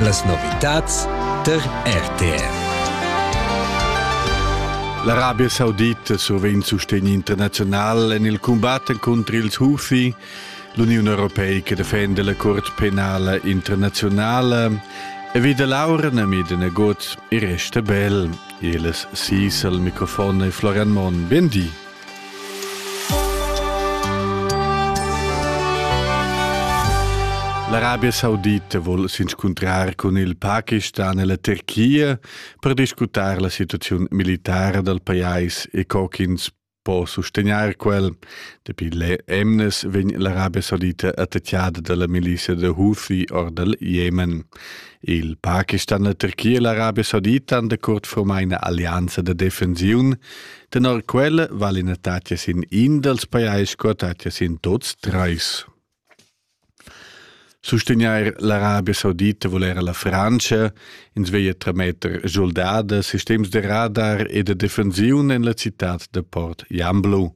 Las novitads tar RTR. L'Arabia Saudita survegn sustegn internaziunal en il cumbat contr ils Houthi. L'Uniun europeica defenda la curt penala internazionala e vida l'aura nami de negot e resta bel. Il sis al microfon è Florian Mon. Ben di. L'Arabia Saudita vuol s'inscuntrar cun il Pakistan e la Turchia per discutar la situazione militare del pajais e co ch'ins può sostenere quel. Dapi le emnes vegn l'Arabia Saudita attacchiata dalla milicia da Houthi or dal Jemen. Il Pakistan, la Turchia e l'Arabia Saudita han da curt formai una alleanza da defensione Tenor quella val ina tatgia sin in dals pajais co tatgia sin tuts trais. Sustagnair l'Arabia Saudita vul era la Frantscha, ins veglia trametter soldada, sistems da radar e da defensiun en la citad da Port Jamblo.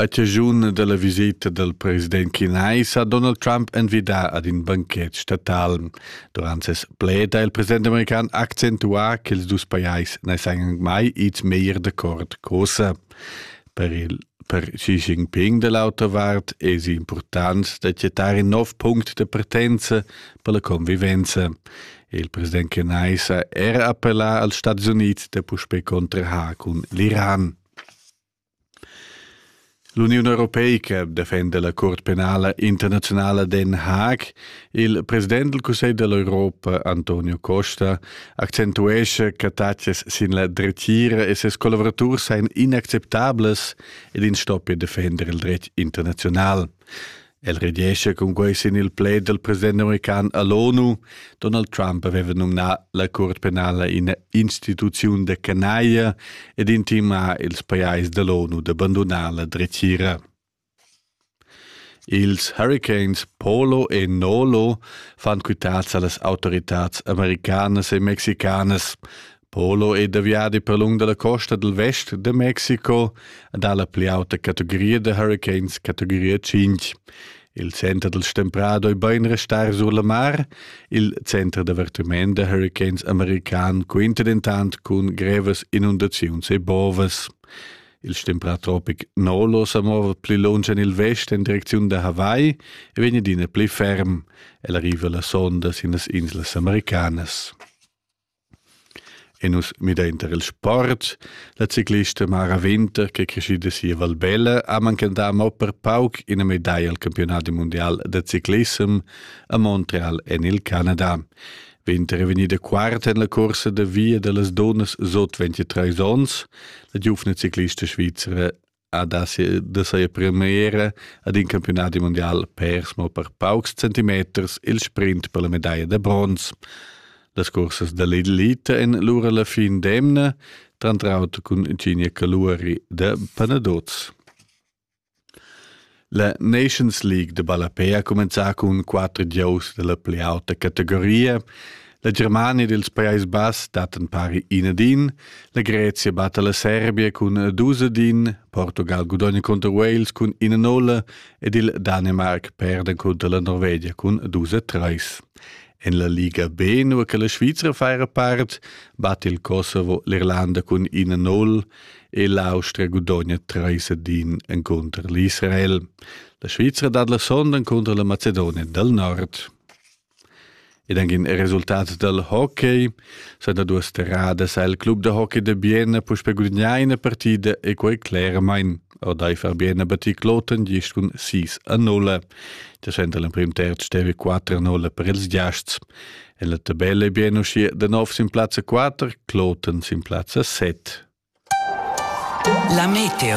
A chaschun da la viseta dal president chinais ha Donald Trump envidà ad in banchet statal. Durant ses pled ha il president american accentuà ch'ils dus pajais na sajan mai ids meglier d'accord cosa. Per il per Xi Jinping da l'auta vart èsi impurtant da chattar in nov punct da partenza per la convivenza. Il president chinais ha era appellà als Stats Unids da puspè contrahar cun l'Iran. L'Uniun europeica defenda la Curt penala internaziunala Den Haag. Il president del Cussegl dell'Europa, Antonio Costa, accentuescha che taxes sin la dretgira e ses collaboraturs seien inacceptables ed in stoppia defender il dretg internazional. El rediescha cun quei sin il plaid dal president american a l'ONU. Donald Trump aveva nominà la Curt penala ina instituziun da canaglia ed intimà ils pajais da l'ONU da bandonar la dretgira. Ils huricans Polo e Nolo fan quitads a las autoritads americanas e mexicanas. Polo è da viadi per lung dalla costa dal vest da Mexico ed ha la pli auta categoria da huricans categoria 5. Il center del Stemprado è bein restar sur la mar, il center d'avertiment da huricans american quinta dentant cun grevas inundaziuns e bovas. Il stemprà tropic Nolo sa mova pli lunsch en il vest en direcziun da Hawaii e vegn adina pli ferm. El arriva la sonda sin las inslas americanas. E nus midainter il sport. La ciclista Mara Winter, ch'è creschida si a Valbella, ha manchentà mo per pauc ina medaglia al campiunat mundial da ciclissem a Montreal en il Canada. Winter è vegnida quarta en la cursa da via da las dunnas sut 23 onns. La giuvna ciclista svizra ha da, da saja premiera ad in campiunat mondial pers mo per paucs centimeters il sprint per la medaglia da bronz. Las cursas da l'elita en lura la fin d'emna, trantraut cun Ginia Caluari da Panadoz. La Nations League de ballapé ha cumenzà cun quatter gieus della pli auta categoria. La Germania dels Paesi Bass dattan pari inadin, la Grezia batta la Serbia cun dus adin, Portugal gudogna contro Wales cun ina nolla ed il Danimark perda contro la Norvegia cun dus a treis. En la Liga B, nua che la Svizra fa era part, batte il Kosovo l'Irlanda cun ina null, e l'Austria gudogna treis ed in encunter l'Israel. La Svizra dat la sonda encunter la Macedonia del Nord. Ed anche in resultat del hockey sono due strade sa il club de hockey de Bienna push per gudagnare una partita e quei claramente Odai Fabiana batì Kloten gist cun 6 a 0. Da senta l'emprim terz stevi 4 a 0 per ils giasts E la tabella è bien uschia da nov sin plazza 4, Kloten sin plazza 7. La meteo